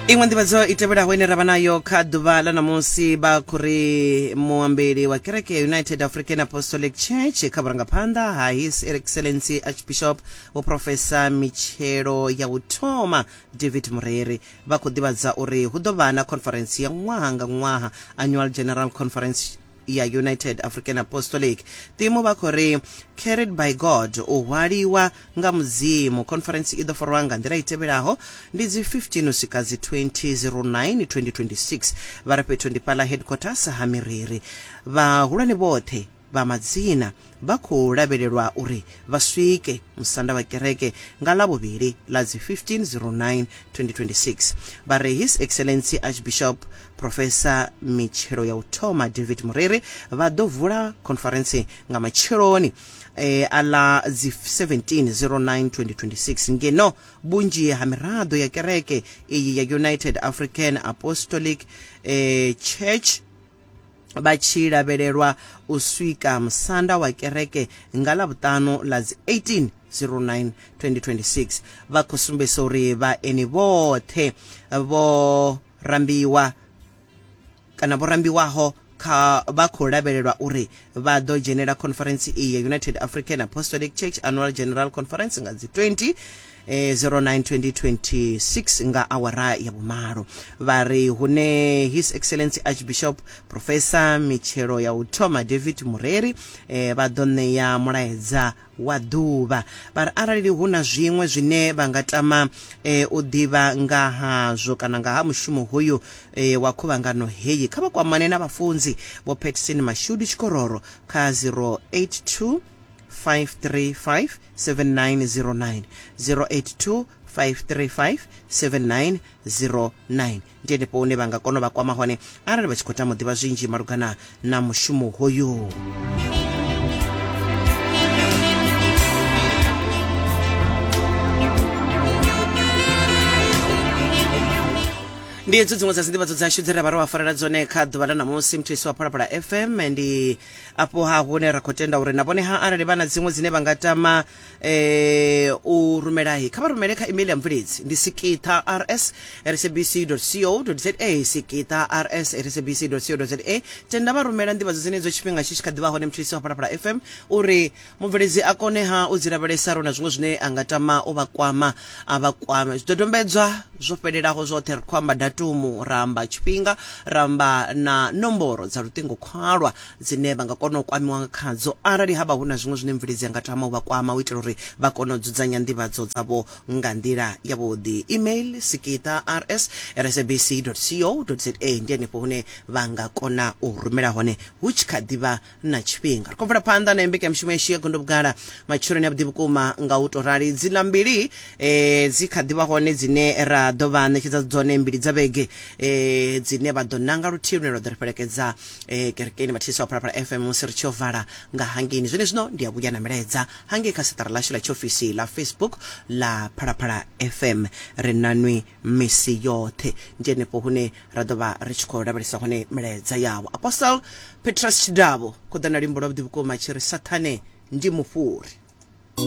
iṅwe nḓivhadzo i tevhelaho ine ra vha nayo kha ḓuvha ḽa ṋamusi vha khou ri muambeli wa kereke ya united african apostolic church kha vhurangaphanḓa ha his excellency archbishop vhuprofesa mitshelo ya u thoma david mureri vha khou ḓivhadza uri hu ḓo vha na conference ya ṅwaha nga ṅwaha annual general conference ya United African Apostolic Timo vha khou ri, Carried by God, u hwaliwa nga Mudzimu. Khonferentsi i ḓo farwa nga nḓila i tevhelaho, ndi dzi 15 uswika dzi 20 Zero 9 2026. Vha re fhethu ndi fhaḽa headquarters ha Miriri. Vhahulwane vhoṱhe vha madzina vha khou lavhelelwa uri vha swike musanda wa kereke nga Ḽavhuvhili ḽa dzi 15 09 2026. Vha re His Excellency Archbishop Professor Mitshelo ya u Thoma David Muriri vha ḓo vula khonferentse nga matsheloni e, a ḽa dzi 17 09 2026 ngeno vhunzhi ha miraḓo ya kereke iyi ya United African Apostolic e, Church vha tshi lavhelelwa u swika musanda wa kereke nga ḽa vhuṱanu ḽa dzi 18 09 2026 vha khou sumbedzisa uri vhaeni vhoṱhe vho rambiwa kana vho rambiwaho kha vha khou lavhelelwa uri Vha ḓo dzhenela khonferentsi iyi ya United African Apostolic Church Annual General Conference nga dzi 20 eh, 09 2026 nga awara ya vhumalo vha ri hune his excellency archbishop professor mitshelo ya u thoma david mureri eh, vha ḓo ṋea mulaedza wa ḓuvha. Vha ri arali hu na zwiṅwe zwine vha nga tama e, u ḓivha nga hazwo kana nga ha mushumo hoyu e, wa khuvhangano heyi, kha vha kwamane na vhafunzi Vho Patson Mashudu Tshikororo kha 082 535 7909, 082 535 7909. Ndi henefho hune vha nga kona u vha kwama hone arali vha tshi khou tama u ḓivha zwinzhi malugana na mushumo hoyu. ndi hedzo dziṅwe dza dzindivhadzo dzashu dze ra vha ro vha farela dzone kha ḓuvha ḽa ṋamusi muthuisi wa phalaphala fm ndi afho ha hune ra khou tenda uri na vhone ha arali vha na dziṅwe dzine vha nga tama eh u rumelahi kha vha rumele kha email ya mvuledzi ndi sikiṱha rs sabc co za sikiṱha rs sabc co za tenda vha rumela nḓivhadzo dzenedzo tshifhinga tshi tshi kha ḓivha hone mutshisi wa phalaphala fm uri mubveledzi a kone ha u dzi lavhelesa ro na zwiṅwe zwine a nga tama u vha kwama a vha kwame zwidodombedzwa zwo fhelelaho zwoṱhe ri khou amba datumu ra amba tshifhinga ra amba na nomboro dza luṱingo khwalwa dzine vha nga kona u kwamiwa nga khadzo arali ha vha hu na zwiṅwe zwine mvuledzi a nga tama u vha kwama u itela uri vha kone u dzudzanya nḓivhadzo dzavho nga nḓila yavhuḓi email sikita rs sabc co za ndi henefho hune vha nga kona u rumela hone hu tshi kha ḓivha na tshifhinga ri khou bvela phanḓa na mbekanyamushumo yashu ya gondo vhugala matshiloni a vhuḓi vhukuma nga u tou rali dzila mbili eh, dzi kha ḓivha hone dzine ra ḓo vha ṋetshedza dzone mbili dza vhege eh, dzine vha ḓo nanga luthihi lune lwa ḓo ri fhelekedza e, kerekeni vhathetshelesi vha phalaphala fm musi ri tshi yo vala nga hangeni zwene zwino ndi a vhuya na milaedza hangei kha seṱara ḽashu ḽa tshiofisi ḽa facebook ḽa phalaphala fm ri nanwi misi yoṱhe ndi henefho hune ra ḓo vha ri tshi khou lavhelesa hone milaedza yavho apostle petrus tshidavho khoḓana limbo lwa vhuḓi vhukuma tshi ri sathane ndi mufhuri